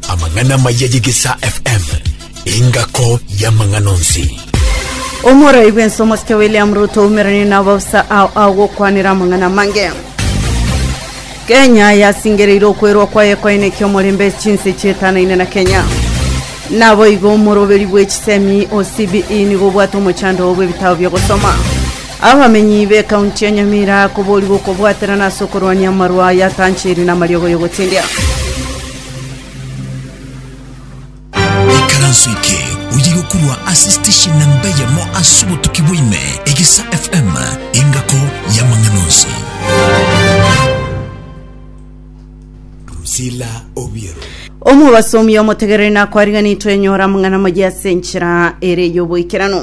Amang'ana maya y'Egesaa FM, engako y'amang'ana onsi. Omorai bwense omosike William Ruto oumerani na abaofisa ao agokwanera amang'ana amange. Kenya yasingereire okwerwa kwaye koine kiomorembe chinse chietanaine na Kenya. Naboigo omoroberi bw'echisemi o CBE nigo obwate omochando bw'ebitabo bi'ogosoma. Abamenyi b'ekaunti ya Nyamira koboorigwa okobwaterana ase okorwania amarwa aya atanchiri namariogo y'ogotendia. Ikaranso eke oye gokurwa ase station na mbeyemo ase obotuki bwaime egisa FM engako yamang'ana onsi. Drusilla Obiero. Omobasomi omotegereri nakwariganitwe enyora amang'ana amaye ase enchera ere y'oboikeranu.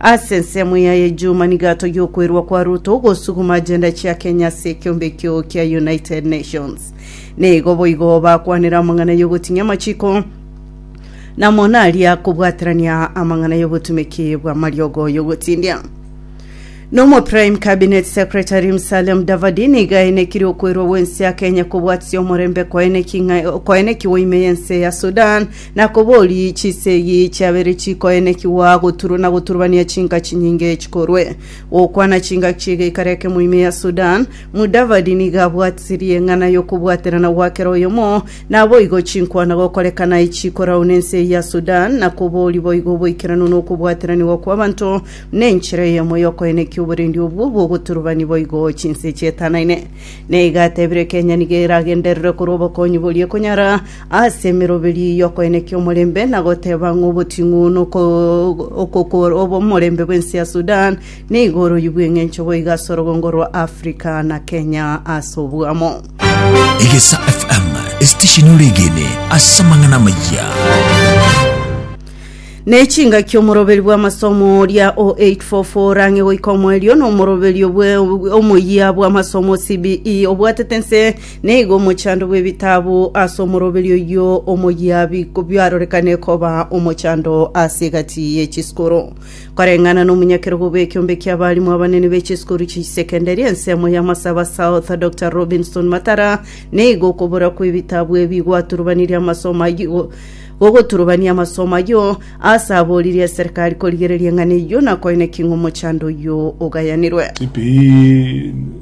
Ase ensemo ya ejuma nigo atogia okwerwa kwa Ruto gosuguma agenda chia Kenya ase ekiombe ekio kia United Nations. Nigo boigo bakwanera amang'ana y'ogotinyia amachiko namo naria kobwaterania amang'ana y'obotumeki bw'amariogo y'ogotindia. Nomo Prime Cabinet Secretary Musalia Mudavadi nigo aenekirie okwerwa gw'ense ya Kenya kobwatisia omorembe koeneki ng'a- koenekiwa ime y'ense ya Sudan Na kobori chisegi chiabere chikoenekigwa goturu na goturubania chinka chinyinge chikorwe gokwana chinka chi'egeikaro ekemo ime ya Sudan, Mudavadi nigo abwatirie eng'ana y'okobwaterana gwa kera oyomo, naboigo chinkwana gokorekana echikorau nense eye ya Sudan, na kobori boigo oboikeranu na okobwateranigwa kw'abanto nenchera eyemo y'okoenekia oborendi obwo bw'ogoturubani boigo chinse chietanaine. Na iga atebire Kenya nigo eragenderere korwa obokonyi boria ekonyara Ase emeroberio eyio okoenekia omorembe na goteba ng'a oboting'u nokogora omorembe bw'ense ya Sudan nigo oroyigwe engencho boigo ase orogongo rwa Africa na Kenya ase oboamo. Egesa FM, esitesheni oregene ase amang'ana amayia. Nechingaki omoroberi bw'amasomo oria o 844 rang'e goika omoerio nomoroberio bwe omoyia bw'amasomo CBE obwatete nse Nigo omochando bw'ebitabu ase omoroberi oyio omoyia biarorekane koba omochando ase egati ye chisikuru. Koreng'ana nomonyakerogo bw'ekiombe ki'abalimu abanene be chisikuru chi'sekendari, ensemo y'amasabo ase South, Dr. Robinson Matara, nigo okobora kw'ebitabu ebi gwaturubanirie amasomo ayio gogoturubania amasomo ayio, aase aboririe eserekari korigereria eng'ana eyio na koineki ng'omochando oyio ogayanirwe.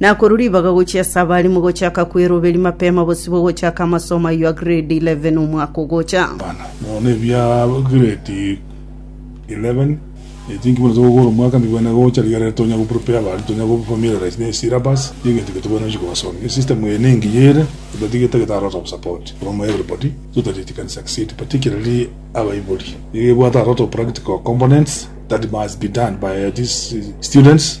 Na korwa ribaga gochia ase abare mogochaka kweroberia mapema bosibwe gochaka amasomo ayio a grade eleven omwaka ogocha. Nonya ebia grade eleven eti inki buna ase gokora omwaka mbibwene gocha rigerere tonya go prepare abana tonya go familiarize ne syllabus na egento ekio tobwate nonya kobasomia. Esystem eye nengiya ere but iga etagete a lot of support from everybody so that it can succeed particularly abaibori. Iga ebwate a lot of practical components that must be done by these students.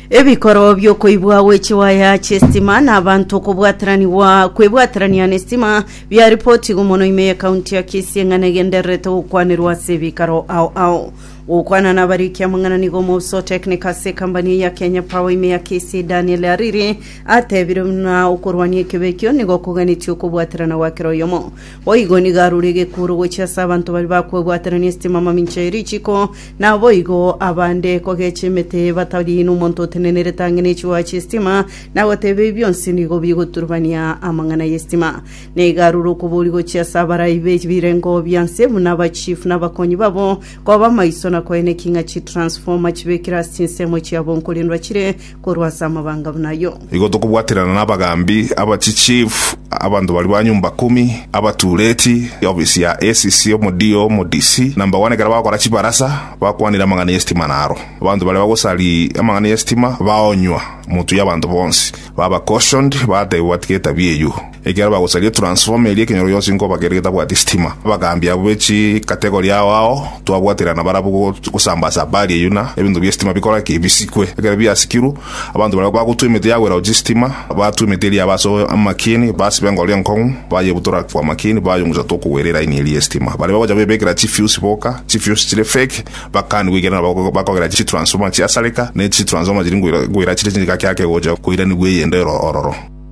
Ebikorwa bi'okoibwa gwe chiwaya chi'esitima na abanto okobwataranigwa kwebwaterania n'esitima biaripotigwe mono ime y'ekaunti ya Kisii eng'ana egendererete gokwanerwa ase ebikaro ao ao. Gokwana nabarikia amang'ana nigo omousa o tekinika ase ekambani eye ya Kenya Power ime ya Kisii Daniel Ariri atebire buna okorwania ekebe ekio nigo koganetie okobwaterana gwa kera oyomo. Boigo nigo arure egekuuru gochia ase abanto baria bakwebwaterania esitima mamincha ye richiko Naboigo abande kogechia emete batari nomonto otenenerete ang'e nechigwa chi'estima, na goteba ebi bionsi nigo bigoturubania amang'ana y'estima. Na iga arure okobori gochia ase abarai be birengo bia nse buna abachifu na abakonyi babo, koba amaiso na koenekia ng'a chitransformer chibekire ase chinsemo chiabo nkorendwa chire korwa ase amabanga buna ayio. Igo tokobwaterana nabagaambi, abachichifu, abanto baria ba nyomba kumi, abatureti, ofisi ya ACC, omodio, omodc, na mbagwana ekero bagokora chibarasa, bakwanire amang'ana y'esitima naro. Abanto baria bagosari amang'ana y'esitima baonywa, motuye abanto bonsi, baba cautioned, batebwa batige etabia eyio. Ekero bagosaria transformer eria ekenyoro gionsi nkoba kere getabwati sitima. Abagaambi abwo be chi category ao ao twabwaterana barabwo go gosambasa habari eyio na ebinto bie sitima bikore ki? Bisikwe. Ekero biasikirwe, abanto baria bagotwa emete ya gwerao chistima, batwa emete eria aba ase amakieni, basiba engoro enkong'u, bayebutora agwo amakieni, bayong'usa tokogwera eraini eria y'esitima. Baria bagocha goebekera chi fuse boka, chi fuse chire fake, bakaanigwe ekiagera nabo bako bakogera chi transformer chiasareka, ne chi transformer chiri ngoira ngoira chire chiri gake gake gocha koiranigwa eyende ero ororo.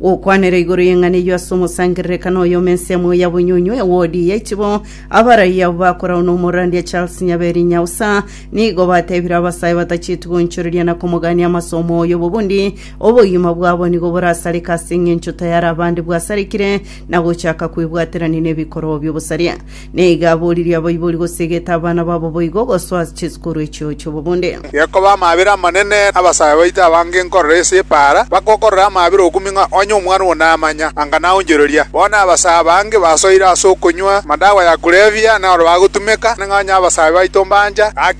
Gokwanera igoro y'eng'ana eyio ase omosangererekano oye ome ensemo ya bonyunywe ya wodi ya ichibo, abaraia abwo bakoragwa n'omorandia Charles Nyaberi Nyausa nigo batebire abasae batacheti goonchoreria na komogania amasomo oyo bobundi obogima bwabo nigo borasareke ase eng'encho tayare abande bwasarekire na gochaka kwebwaterania nebikorwa bi'obosaria. Nigo aboririe abaibori gosegeta abana babo boigo gosoa chisukuru echio chi'obobonde. Gekoba amaabera amanene, abasae baito abange nkorora ase epaara, bagokorora amaabera okumi ng'a onye omwana oo namanya, anga naonchoreria. Bono abasae abange basoire ase okonywa amadawa ya kulevya, na oro bagotumeka, na ng'a onye abasae baito mbancha, gaki